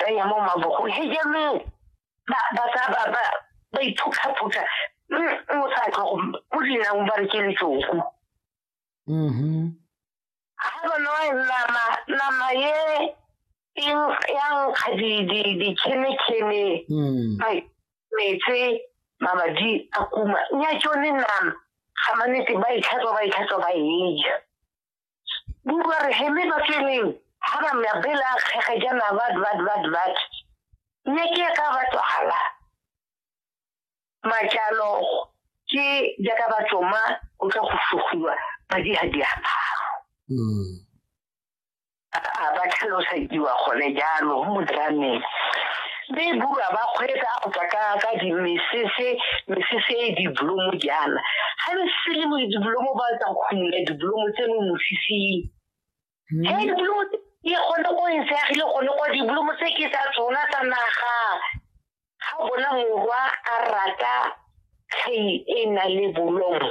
benya mo mabogong he jaanong ba ba sa ba ba ba iphutlhaphutlha o sa tlo go mo dinang ba re ke letsoku mhm ha bona e nama nama ye eng yang ga di di di kene kene mm bai metse mabadi a kuma nya tsone nama ga manete ba itlhatswa ba itlhatswa ba e ja Buba re heme ba tseneng ha ba mya bela kgege jana bad bad bad bad. Mme ke ka ba tswala. Majalo ke jaaka ba tsoma o tla go sugiwa ba di ha di aparo. Mm. A ba tlhalosediwa gone jalo mo drameng. be bua ba kgwetsa go tswa ka ka dimesese mesese e diblomo jaana ga le sele mo diblomo ba tsa go khumula diblomo tse mo mosising hmm. he diblomo e gone go e seagile gone kwa diblomo tse ke tsa tsona tsa naga ga bona morwa a rata kgei e na le bolomo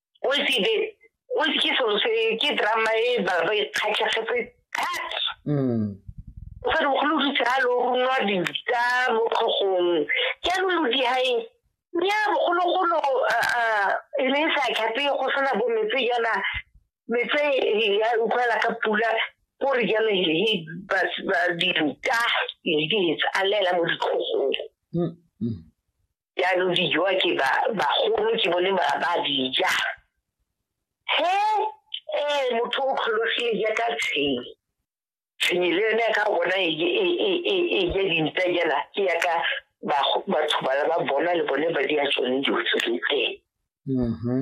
o se be o se ke selo se ke drama e ba ba ikgatlhegetse that mm o sa go lo ditse ha lo runwa dita mo khogong ke lo lo di hae nya bogolo golo e le sa khape go sena bo metse yana metse ya utlwala ka pula gore jalo he ba di ruta le di tsalela mo dikhogong mm, mm. jaanong di jowa ke bagolo ke bone ba dija he ee motho o kgologile jaaka tshenyi tshenyi le yone ka bona e, e, e, e ja dintsa jana ke yaka batho bala ba bona le bone ba di a tsone dilo tse teng mm-hmm.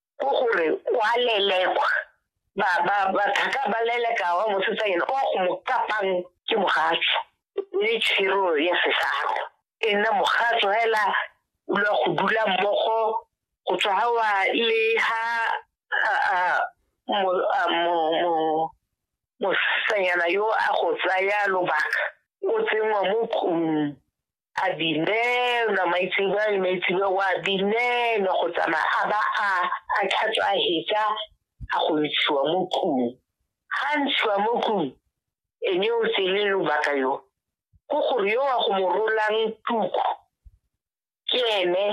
ko gore wa lelekwa ba ba ba thaka ba leleka wa mosetsanyana o go mo kapang ke mogatso le tshiro ya sesaro e nna mogatso hela o lwa go dula mmogo go tswa ha wa le ha mosetsanyana yo a go tsaya lobaka o tsenngwa mo tlong Abineri na maitsebwa le maitsebwa wa Abineri na go tsamaya a ba a a tlhatswa a hetsa a go ntshiwa mo tlung ga ntshiwa mo tlung ene o tsele lobaka yo ko gore yo wa go mo rolang tuku ke ene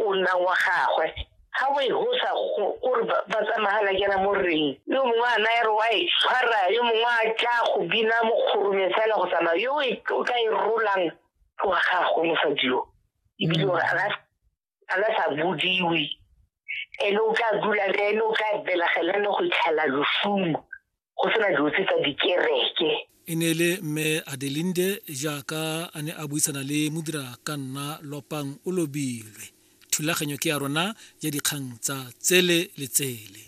o nna wa gagwe ga o e gosa gore ba tsamagala kena mo rreng yo mongwe a naya re wa e tshwara yo mongwe a tla go bina mo kgoromeng fela go tsamaya yo e, o ka e rolang go wa gagwe mosadio ebile gore a la sa bodiwe ene o tla dula le ene o tla belegela ne go itlhela lofumo go sena dilo tse tsa dikereke e ne le mme adelinde jaaka a ne a buisana le modira ka nna lopang o lobilwe thulaganyo ke ya rona ya dikgang tsa tsele le tsele